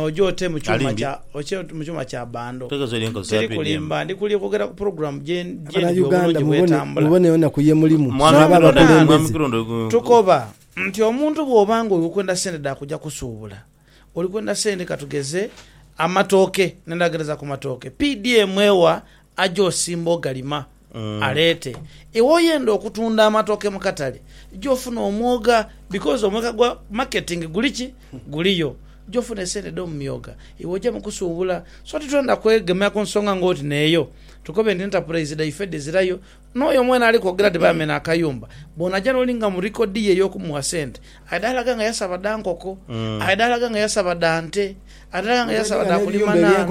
Oje ote mu kyuma kya bando. Teri kulimba, ndi kuli kwogera ku pulogulamu gye ndi obulungi bw'etambula. Mwami Kirundo, tukoba nti omuntu bw'oba nga oli kwenda sente dha kuja kusuubula, oli kwenda sente ka tugeze amatooke, n'endagala edha ku matooke, PDM ewa aje osimbe ogalima. aleete. Iwe oyenda okutunda amatooke mu katale ja ofune omwoga because omweka gwa marketing guli ki? Guliyo. Ja ofune sente edh'omu myooga. Iwe oja mu kusuubula. So titwenda kwegemera ku nsonga ng'oti n'eyo tukobe nti enterprise dhaife dhizirayo. N'oyo mwene ali kwogera nti baamena akayumba, bw'onaja n'olinga mu record ye ey'okumuwa sente, Aye dhaalaga nga yasaba dha nkoko, aye dhaalaga nga yasaba dha nte, aye dhaalaga nga yasaba dha kulima naana.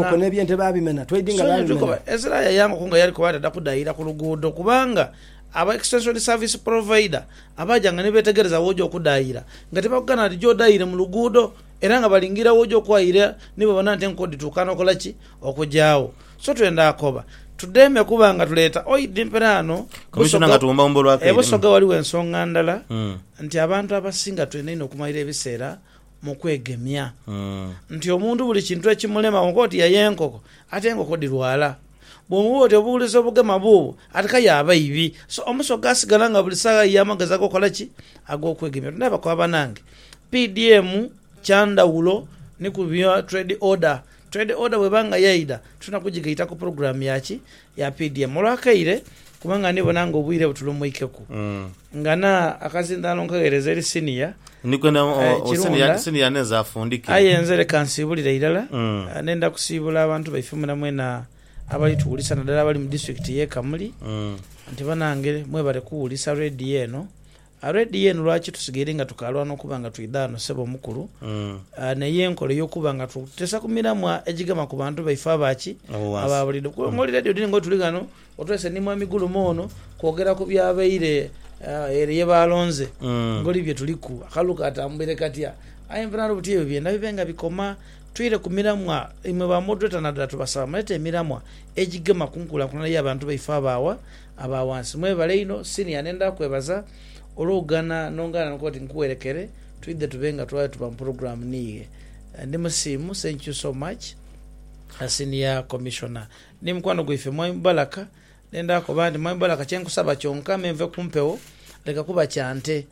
Sonia Tukoba, Ezra yayanguku nga yali kuba atadha kudhayira ku luguudo kubanga aba Extension Service Provider abaajanga ni beetegereza w'oja okudhayira nga tibakugana nti ja odhayire mu luguudo era nga balingiira w'oja okwayira ni babona nti enkoko dhituuka n'okola ki? Okugya agho. So twenda akoba tudeme kuba nga tuleeta oidi mperaano Busoga. E Busoga ghaligho ensonga ndala nti abantu abasinga twenda inho okumalira ebiseera mu kwegemya. Nti omuntu buli kintu ekimulema wonka oti yaye enkoko ate enkoko dhirwala. Bwomubuuza oti obuwulize obugema buubwo ati kaya abaibi. So Omusoga asigala nga buli saagha ayiya amagezi ag'okukola ki? Ag'okwegemya. Tundhabe akoba banange. PDM kyandhawulo ni ku bya trade order. Trade order bweba nga yaidha tulina kujigaita ku pulogulaamu ya ki? Ya PDM. Olwakaire kubanga ndi bona nga obwire butulumuikeku ngana akazindaalo nkagheereza eri siniya aye kirunda. Aye nze leka nsiibulire irala, ndenda kusiibula abantu baife mwena mwena abali tuwulisa nadala abali mu disiturikiti y'e Kamuli nti banange mwebale kuwulisa Radio eno. Already yenu lwaki tusigaire nga tukalwana okuba nga twidha ghano sebo omukulu ah, neyo enkola eyokuba nga tutesa ku miramwa egigema ku bantu baife aba ki? Ab'owansi. aba buliidho. Kuba ngoli ready oti ng'otuli ghano otwese ni Mwami Gulume ono kwogera ku byabaire ah, ere ye baalonze ngoli bye tuliku akalulu katambwire katya. Aye nve naloba oti ebyo byena bibe nga bikoma twire ku miramwa imwe ba moderator nadala tubasaba mulete emiramwa egigema ku nkulankulana ya bantu baife aba wa? Aba ghansi mwebale inho. Senior nendha kwebaza olwokugana nongana nokuba nti nkuwerekere twidhe tube nga twaayo tuba mu program niighe. Ndi musiimu thank you so much senior commissioner. Ni mukwano gwaife Mwami Mubaraka nendha koba nti Mwami Mubaraka kyenkusaba kyonka me nve kumpewo leka kuba kya nte.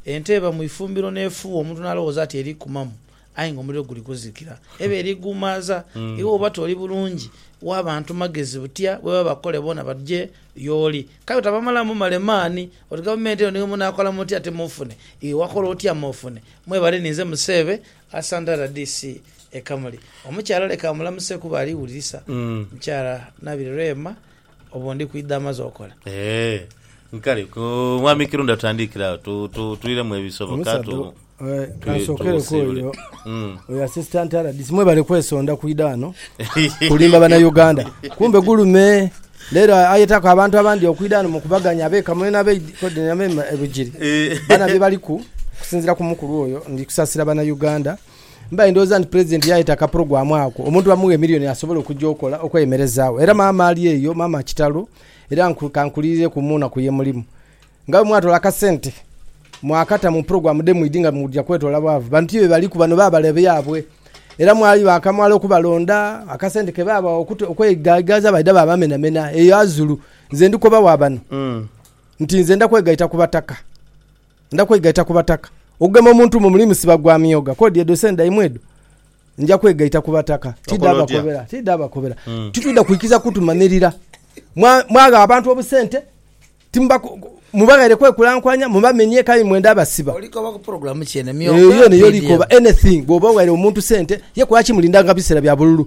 Ente eba mwifumbiro nefuuwa omuntu nalowooza nti erikumamu aye nga omuliro guli kuzikira. Eba eri gumaaza, iwe oba toli bulungi, wa bantu magezi butya bwe baba bakole boona badhje y'oli. Kale otabamalamu male maani oti gavumenti eno niyo munaakola mutya ate mufune. Iwe wakola otya mufune? Mwebale ninze Museebe Asantha rdc e Kamuli. Omukyala leka amulamuseku kuba aliwulirisa. Mukyala Nabiri Rehema Obwo ndi kwidha amaze okola. Eeh nkale ku Mwami Kirunda tutandikire agho tu, tu, twiremu ebisoboka Omusaadha tu, o- eh, tu- kansokereku tusiibule. oyo Mm. oyo assistant RDC mwebale kwesonda kwidha ghano kulimba bana Uganda kumbe gulume lero ayetaku abantu abandi okwidha ghano mukubaganya abe Kamuli nabe Kodi nabe e Bugiri Eh. bana byebaliku okusinzira ku mukulu oyo ndi kusasira bana Uganda Mbaire ndhowooza nti Pulezidenti yaayeta akapulogulaamu ako omuntu bamughe miliyoni asobole okugya okola okweyemerezaagho. Era maama ali eyo, maama kitalo, era nku, ka nkuliirireku mu nnaku ye mulimu. Nga bwe mwatoola akasente mwakata mu pulogulaamu dhe mwidhi nga muja kwetoola bwavu, bano ti be baliku, bano baabale byabwe. Era mwali baakamala okubalonda, akasente ke baabawa okute, okweigaigaiza baidha baabamenamena eyo azulu. Nze ndi koba wa bano nti nze nda kwegaita ku bataka. Ndha kwegaita ku bataka. Okugema omuntu mu muli musiba gwa myogha, kodi edho sente dhaimwe edho. Nja kwegaita ku bataka. Tidha bakobera. Tidha bakobera. Titwidha kwikiriza kutumanhirira. Mwagha abantu obusente, mubaghaire kwekulankulanya, mubamenye kale imwe ndha basiba. Olikoba ku pulogulaamu ki eno? Emyogha? Eyo yona yo likoba. Anything. Bw'oba oghaire omuntu sente, ye kuba ki mulindanga biseera bya bululu?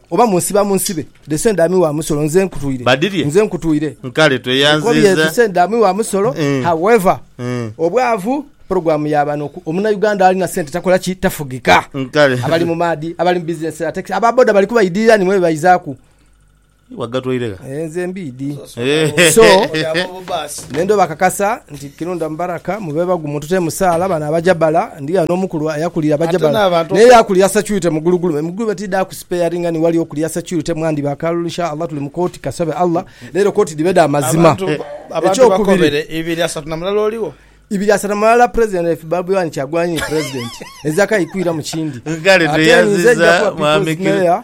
Oba munsiba munsibe, the same dami wa musolo nze nkutwire, Badilye? nze nkutwire. Nkale Nkobye the tweyanziiza. same dami wa musolo, Mm. however Mm. obwavu program ya bano oku- omuna Uganda alina sente takola ki tafugika. Nkale. Abali mu maadi, abali mu business za taxi, aba boda bali kubaidhirira nimwe bebaizaku. Wagatwaire gha? Eh, nze mbiidi. Eh. So- Oyo aba obubaasi. N'endhoba akakasa nti, Kirunda Mubaraka mu beebaghu muntu te musaala, bano abaja bala, ndi ghano omukulu ayakulira abaja Ate bala, n'abantu n'eyo oku- akulira securite mu gulugulu. Emigulube tidha ku sparinga ni wali okulira securite mwandi ba kalulu inshallah tuli mu kooti kasabe Allah leero kooti dhibe dha mazima. Abantu ba- abantu Ekyokubiri, bakobere ibiri asatu na mulala oligho? ibiri asatu na mulala president if Bobi Wine Kyagulanyi ye president ezakayi kwiramu kindi Kale Ate nze nja tweyaziza kuba mwami people's Kir- mayor.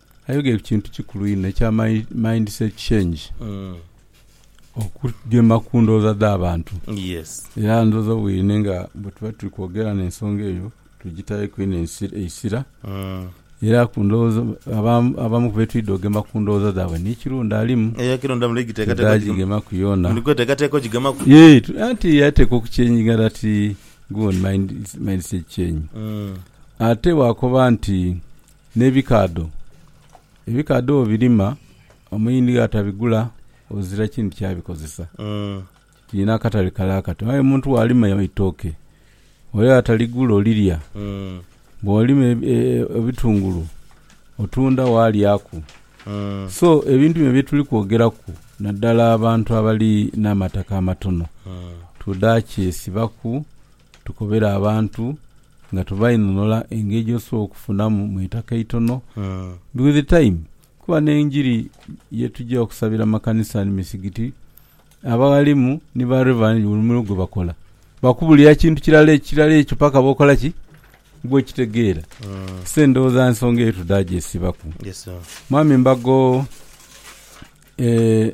Ayogeire ku kintu kikulu inho ekya mindset change, okugema ku ndhooza dh'abantu. Era ndhooza bwine nga bwe tuba tuli kwogera n'ensonga eyo tugitaireku inho eisira. Era ku ndhooza, abamu ku be twidha ogema ku ndhooza dhaibwe ni kiro ndhalimu tidha gigemaku yoona. Yee, anti yateekwa okukyeinginga dhati good mindset change. Ate bwakoba nti N'ebikaadho. Ebikaadho bw'obirima, omuyindi atabigula ozira kindi kyabikozesa. Kiina akatale kale akato. Aye omuntu bw'alima eitooke, ole ataligula olirya. Bw'olima ebitungulu, otunda waalyaku. So, ebintu bino bye tuli kwogeraku, naddala abantu abali n'amataka amatono, tudha kyesibaku tukobere abantu Nga tubainhonhola engeri gyosobola okufunamu mu itaka eitono ndi with time kuba nenjiri yetugya okusabira makanisa ni misigiti abaghalimu ni ba reverend buli mulimu gwebakola bakubulira kintu kirala ekirala ekyo paka bwokola ki bwokitegeera so endhoghoza nsonga eyo tudagyesibaku mwami mbago eeh.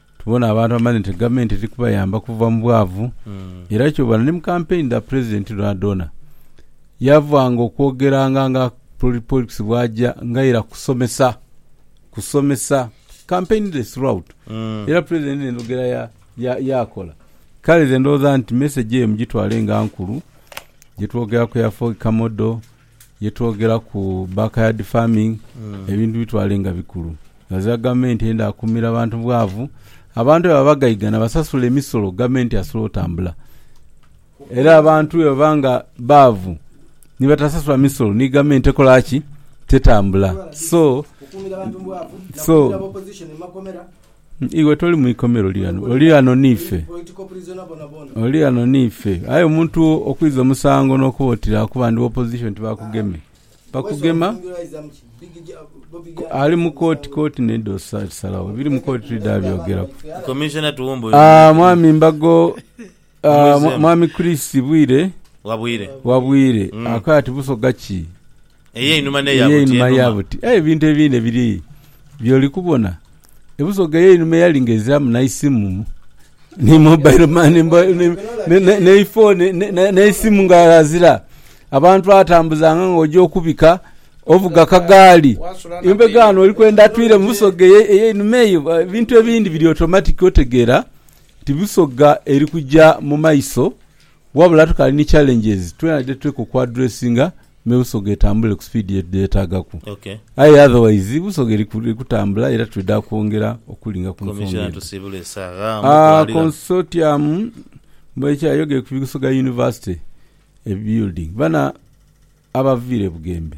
Tubona abantu abamanhe nti gavumenti eri kubayamba kuva mu bwavu, era kyobona ni mu kampeyini dha Pulezidenti dhoonadhoona yavanga okwogeranga nga Poli Polikisi bw'aja nga ira kusomesa, kusomesa, kampeyini dhe throughout. Era Pulezidenti n'endhogera ya, ya, y'akola. Kale nze ndowooza nti mesegi eyo mugitwale nga nkulu, gye twogeraku ya Fog Kamodo, ye twogera ku backyard farming, ebintu bitwale nga bikulu. Ghazira gavumenti eyenda kumira bantu bwavu, abantu bwebaba bagaigana basasule emisolo gavumenti asobole otambula. Era abantu bwebaba nga baavu ni batasasula misolo ni gavumenti ekola ki? Tetambula. So, so Iwe toli mu ikomera, oli ghano, oli ghano n'ife. Oli ghano n'ife. Aye omuntu okwiza omusango n'okuba oti lira kuba ndi opposition tibakugeme. Bakugema, ku- ali mu kooti, kooti nayo edha osa- osalagho. Ebiri mu kooti twidha byogeraku. Commissioner Tuwumbuye. Ah, mwami Mbago, Mumwizeemu. Mwami Chris Bwire Wa bwire. wa Bwire akoya ati Busoga ki Ey'einhuma n'eya buti ey'einhuma ya enhuma. buti? Aye ebintu ebindi biri by'oli kubona. Ebusoga ey'einhuma eyali ng'eziramu n'eisimu ni mobile money mbo- ni- ni- ni- n'eifooni ni- ni- n'eisimu nga azira. Abantu atambuzanga ng'oja okubika ovuga kagaali. Embegaano oli kwenda atwire mu Busoga eye- ey'einhuma eyo, ebintu ebindi biri automatic otegeera. Ti bisoga eri kuja mu maiso wabula tukaali ni challenges twena dhe tuteekwa oku addressinga me Busoga etambule ku speed ye yetaagaku. Aye otherwise Busoga eri kutambula era twidha kwongera okulinga ku nsonga edho. Consortium Muheche ayogeye ku Busoga University building. Bano abaviire e Bugembe.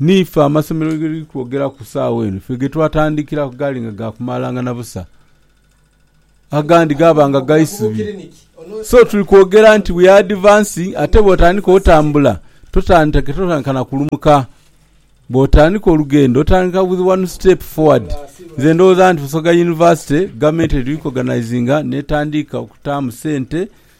Niife amasomero ge tuli kwogera ku saagha eno, ife ge twatandikiraku gaali nga ga kumalangana busa, agandi gaaba nga ga isubi. So tuli kwogera nti we are advancing, ate bw'otandika otambula totandika totandika na kulumuka. Bw'otandika olugendo otandika with one step forward. Nze ndowooza nti Busoga University gavumenti eri kwoganayizinga n'etandiika okutaamu sente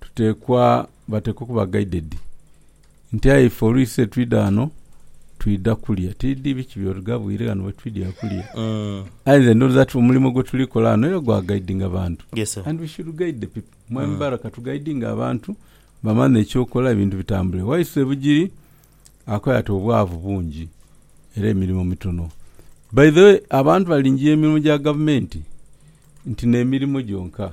tuteekwa bateekwa okuba gaidedi nti aye ife oluisi etwidha ghano twidha kulia, tidhi biki by'olighabwire ghano wetwidhira kulia. Aye nze ndhooza ti omulimo gwetuli kola ghano era gwa gaidinga bantu Yes, sir. and we should guide the people. Mwami Barra katugaidinge abantu bamanhe eky'okola ebintu bitambule. Waiswa e Bugiri akoya ati obwavu bungi era emirimo mitono. By the way, abantu balingiya emirimo gya gavumenti nti n'emirimo gyonka.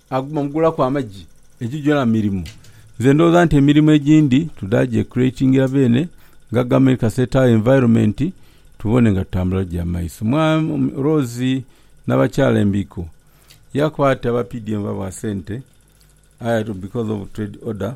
Aguma mugulaku amagi. Egyo gyona mirimu. Nze ndowooza nti emirimu egindi tuda gye creatingira beene nga government ka set our environment tubone nga tutambula gya maiso. Mwami Rose nabakyala embiiko yakwata aba PDM babwa sente aye because of trade order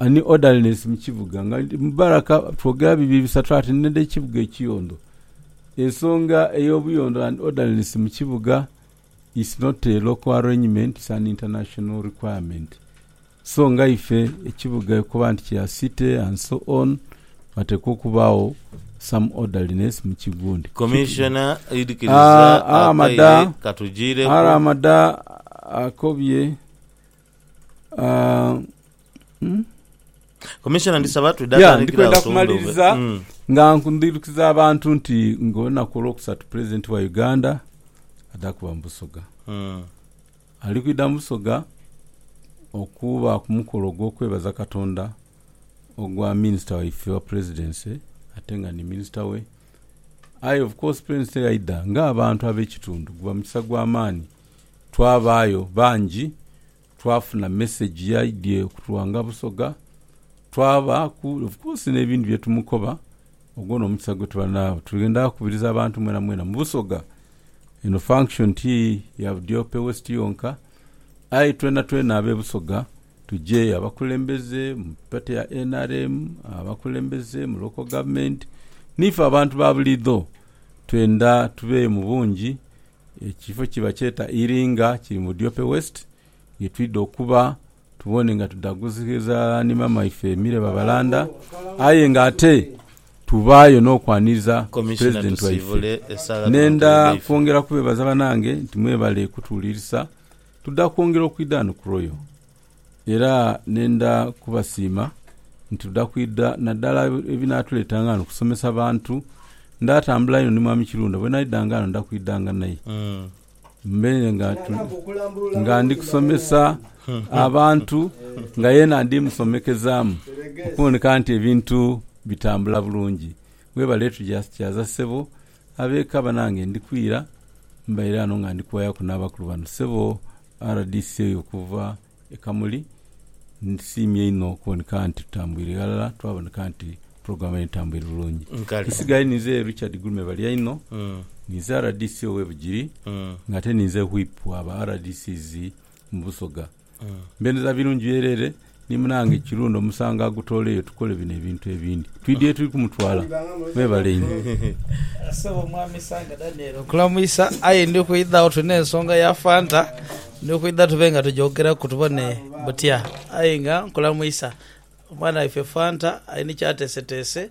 Ani odalineese mu kibuga? Nga ndi mu baraka twogera bibi bisatu ati nidha ekibuga ekiyondo. Ensonga ey'obuyondo and orderliness mu kibuga is not a local arrangement, it's an international requirement. So nga ife ekibuga okuba nti kya city and so on, wateekwa okubaagho some orderliness mu kigundi. Commissioner Idikiriza Akaire katujiireku. Aramada akobye. Ah, hmm? Commissioner ndisaba twidha Yeah, tandikira ndikwenda awo tuwumbe kumaliriza obwe- Mm. nga ndhirukiza abantu nti ng'olunaku olwokusatu pulezidenti wa uganda adha kuba mu busoga Mm. ali kwidha mu busoga okuba ku mukolo ogw'okwebaza katonda ogwa minisita waife wa pulezidence ate nga ni minisita we aye of course pulezidenti yaidha ng'abantu ab'ekitundu guba mukisa gw'amaani Twabaayo bangi, twafuna mesegi ye aidhie okutughanga Busoga, twabaaku of course n'ebindi bye tumukoba. Ogwo n'omukisa gwe tuba naagho. Twendha kubiriza abantu mwenamwena mu Busoga, eno function ti ya Budiope West yonka, aye twenatwena ab'e Busoga tuje, abakulembeze mu pate ya nrm, abakulembeze mu local government, niife abantu ba buliidho twendha tubeeyo mu bungi Ekifo kye bakyeta Iringa kiri mu Diope West, ye twidha okuba tubone nga tudhaguziza ni maama ife Emile Babalanda aye nga ate tubaayo n'okwaniriza Pulezidenti waife. Nendha kwongera kubeebaza banange nti mwebale kutuwulirisa, tudha kwongera okwidha ghano ku Royal. Era nenda kubasiima nti tuda kwidha nadala ebinatuleeta nga ghano kusomesa bantu. Ndatambula inho ni Mwami Kirunda, bwenaidha nga ghano nda kwidha nga naye mbe nga ndi kusomesa abantu nga yena ndi musomekezaamu okuboneka nti ebintu bitambula bulungi. Webale tugya kyaza ssebo Ab'eka banange ndi kwira, mbaire ghano nga ndi kuwayaku n'abakulu bano. Ssebo rdc oyo okuva e Kamuli, nsiimye inho okuboneka nti tutambwire ghalala twaboneka nti pulogulaamu eno etambwire bulungi. Nkali. Nsigaire ninze Richard Gulume Balyaino, ninze rdc ow'e Bugiri ng'ate ninze Whip wa ba rdcs mu Busoga. Mbendeza birungi byereere ni munange Kirunda omusango agutooleyo tukole bino ebintu ebindi. Twidhi yetuli kumutwala. Mwebale inho. Ssebo Omwami Sanga Daniel nkulamwisa aye ndi kwidha agho tulina ensonga ya Fanta ndi kwidha tube nga tujoogeraku tubone butya aye nga nkulamwisa. Omwana waife Fanta ali ni kyateeseteese.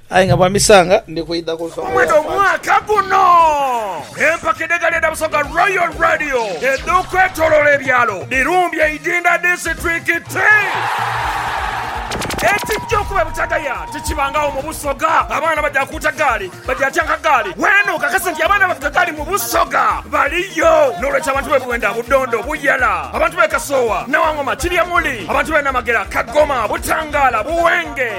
Aye nga bwa misanga ndi kwidha ku nsonga ya Faki. Omwaka guno empaka edh'egaali edha Busoga Royal Radio edh'okwetoloola ebyalo dhirumbye Idinda disiturikiti. Ekijja okuba ebutagaya tikibangagho mu Busoga. Abaana baja kuuta gaali, baja tyanka gaali. Weene okakase nti abaana abavuga gaali mu Busoga baliyo. N'olwekyo abantu b'e Bwenda, Budondo, Buyala, abantu b'e Kasoowa, Nawangoma, Kiryamuli, abantu b'e Namagera, Kagoma, Butangaala, Buwenge,